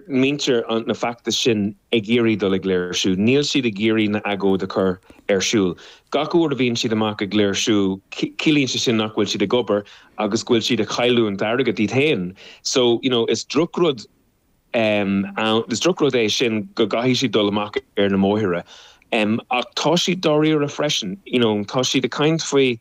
muintir an fheachtais sin ag iarraidh dul ag léirsiú. Níl siad ag iarraidh na agóid a chur ar siúl. Gach uair a bhíonn siad amuigh ag léirsiú ciallaíonn sé sin nach bhfuil siad ag obair agus go bhfuil siad ag cailliúint airgead iad féin. So, you know, is drochrud ann, is drochrud é sin go gcaithfidh siad dul amach ar na mbóithre. Ach tá siad dáiríre freisin. You know, tá siad ag caint faoi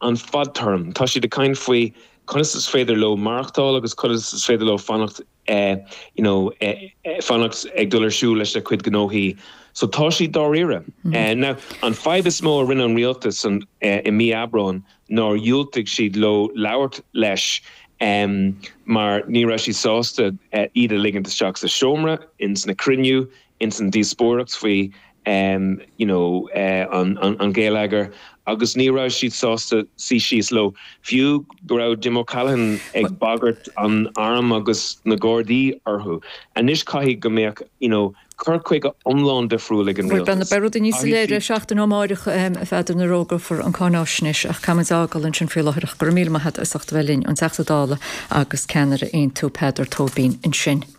an fadtéarm, tá siad ag caint faoi conas is féidir leo maireachtáil agus conas is féidir leo fanacht i eh you know eh eh fanacht ag dul ar siúl leis a gcuid gnóthaí so tá siad dáiríre. Eh now an fadhb is mó a rinne an rialtas an eh i mí Aibreáin nár dhiúltaigh siad leo labhairt leis em mar ní raibh siad sásta eh iad a ligint isteach sa seomra ins na cruinniú ins an díospóireacht faoi you know an ngeilleagar agus ní raibh siad sásta suí síos leo fiú go raibh Jim O'Callaghan ag bagairt an airm agus na gardaí orthu. Anois caithfidh go mbeadh you know cur chuige iomlán difriúil ag an rialtas. Beidh rudaí níos soiléire seachtain ó amárach a Pheadair nuair a fhógrófar an cáináisnéis ach caithfidh muid a fhágáil ansin faoi láthair. Go raibh míle maith agat as ucht a bheith linn, an Teachta Dála agus ceannaire Aontú, Peadar Tóibín ansin.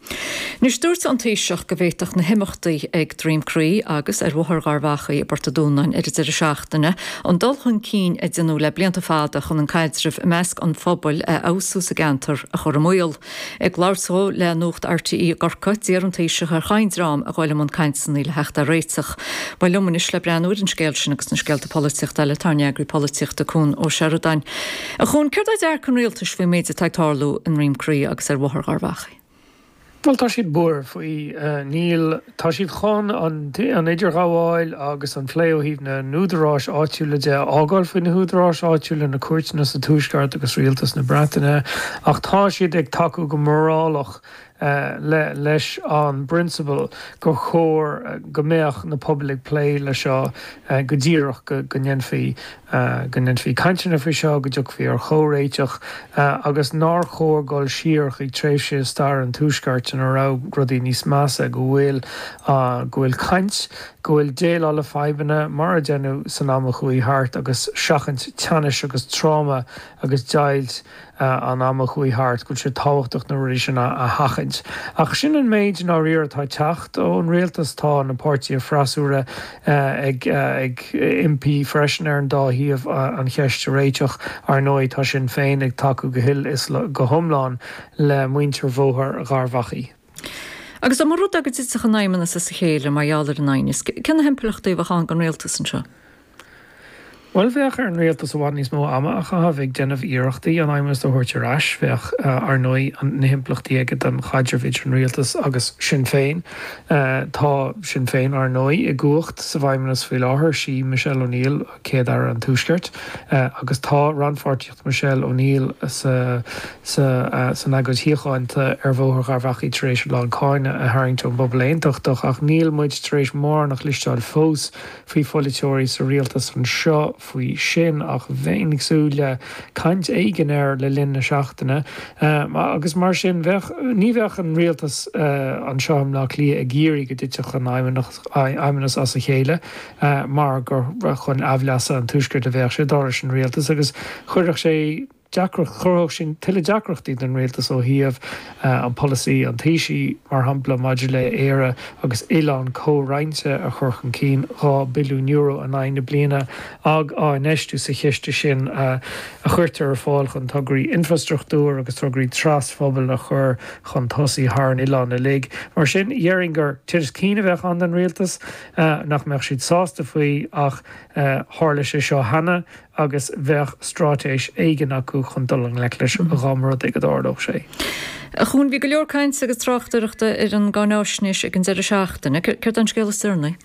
Anois dúirt an Taoiseach go bhféadfadh na himeachtaí ag Droim Crí agus ar Bhóthar Gharbh Achaidh i bPort a' Dúnáin ar an deireadh seachtaine an dul chun cinn a deineadh le blianta fada chun an caidreamh i measc an phobail a fheabhsú sa gceantar a chur i mbaol. Ag labhairt dó le Nuacht RTÉ i gCorcaigh, d'iarr an Taoiseach ar chaon dream a ghabhail i mbun cainteanna le theacht ar réiteach. Tá liom anois le breathnú ar an scéal sin agus na scéalta polaitiochta eile tá ár n-eagraí polaitíochta Cuan Ó Seireadáin. A Chuan, céard é dearcadh an Rialtais faoin méid atá ag tarlú i nDroim Crí agus ar Bhóthar Gharbh Achaidh. Bhuel, tá siad buartha faoi. Níl, tá siad chun an idirghabháil agus an plé ó thaobh na n-údaráis áitiúla de a fhágáil faoi na húdaráis áitiúla, na cúirteanna sa Tuaisceart agus Rialtas na Breataine, ach tá siad ag tacú go morálta leis an bprionsabal gur chóir go mbeadh na pobail ag plé leis seo go díreach, go ndéanfaí. go ndéanfaí cainteanna faoi seo, go dtiocfaí ar chomhréiteach agus nár chóir dul siar chuig tréimhse i stair an Tuaiscirt ina raibh rudaí níos measa, go bhfuil, go bhfuil caint, go bhfuil déileáil le fadhbanna mar a deineadh san am a chuaigh thart agus seachaint teannais agus tráma agus deighilt. an am a chuaigh thart go bhfuil sé tábhachtach na rudaí sin a sheachaint. Ach sin an méid, i ndáiríre, atá ag teacht ón rialtas. Tá na páirtithe freasúra ag impí freisin ar an dá thaobh an cheist a réiteach. Ar ndóigh, tá Sinn Féin ag tacú go huile is go hiomlán le muintir Bhóthar Gharbh Achaidh. Agus dá mba rud é go dtitfeadh an Feidhmeannas as a chéile mar gheall ar an aighneas, cé na himpleachtaí a bheadh ann don rialtas anseo? Bhuel, bheadh ar an rialtas i bhfad níos mó ama a chaitheamh ag déanamh iarrachtaí an feidhmeannas a thabhairt ar ais. Bheadh, ar ndóigh, na himpleachtaí aige don chaidreamh idir an rialtas agus Sinn Féin. Tá Sinn Féin, ar ndóigh, i gcumhacht sa bhfeidhmeannas faoi láthair. Sí Michelle O'Neill Céad-Aire an Tuaiscirt agus tá rannpháirtíocht Michelle O'Neill san agóid shíochánta ar Bhóthar Gharbh Achaidh tar éis a lán cáineadh a tharraingt ón bpobal aontachtach. Ach níl muid tar éis mórán a chloisteáil fós. ó pholaiteoirí sa rialtas anseo faoi sin ach bheinn ag súil le caint éigin air le linn na seachtaine agus mar sin bheadh, ní bheadh an rialtas anseo i mBleá Cliath ag iarraidh go dtitfeadh an feidhmeannas as a chéile mar gur chun aimhleasa an tuaiscirt a bheadh sé dar leis an rialtas agus chuirfeadh sé deacracht. Chruthódh sin tuilleadh deacrachtaí don rialtas ó thaobh an polasaí, an Taoisigh, mar shampla, maidir le 'Éire agus Oileán Comhroinnte' a chur chun cinn, €2 billiún in aghaidh na bliana á infheistiú sa chiste sin a chuirtear ar fáil chun tograí infreastruchtúir agus tograí trasphobail a chur chun tosaigh thar an oileán uilig. Mar sin, dhéarfainn gur tinneas cinn a bheadh ann don rialtas, nach mbeadh siad sásta faoi ach tharla sé seo cheana. agus bheadh stráitéis éigin acu chun dul i ngleic leis dhá mba rud é go dtarlódh sé. A Chuan, bhí go leor cainte agus tráchtaireachta ar an gcáinaisnéis ag an deireadh seachtaine. Céard é an scéal is deireanaí?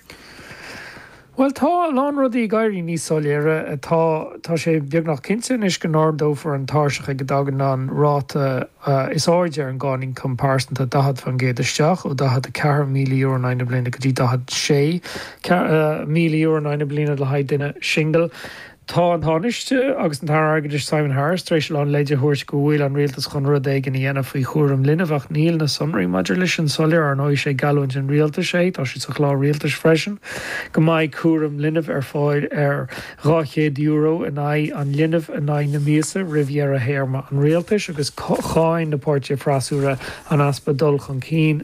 Bhuel, tá a lán rudaí ag éirí níos soiléire. Tá, tá sé beagnach cinnte anois go n-ardófar an tairseach ag a dtagann an ráta is airde ar an gcáin ioncaim pearsanta, 40% isteach, ó €44,000 in aghaidh na bliana go dtí 46 míle euro in aghaidh na bliana le haghaidh duine singil. Tá an Tánaiste agus an tAire Airgeadais Simon Harris tar éis a lán leid a thabhairt go bhfuil an Rialtas chun rud éigin a dhéanamh faoi chúram linbh ach níl na sonraí maidir leis sin soiléir. Ar ndóigh is é geallúint an Rialtais é, tá sé sa Chlár Rialtais freisin, go mbeidh cúram linbh ar fáil ar €200 in aghaidh an linbh in aghaidh na míosa roimh dheireadh théarma an Rialtais agus cháin na páirtithe freasúra an easpa dul chun cinn.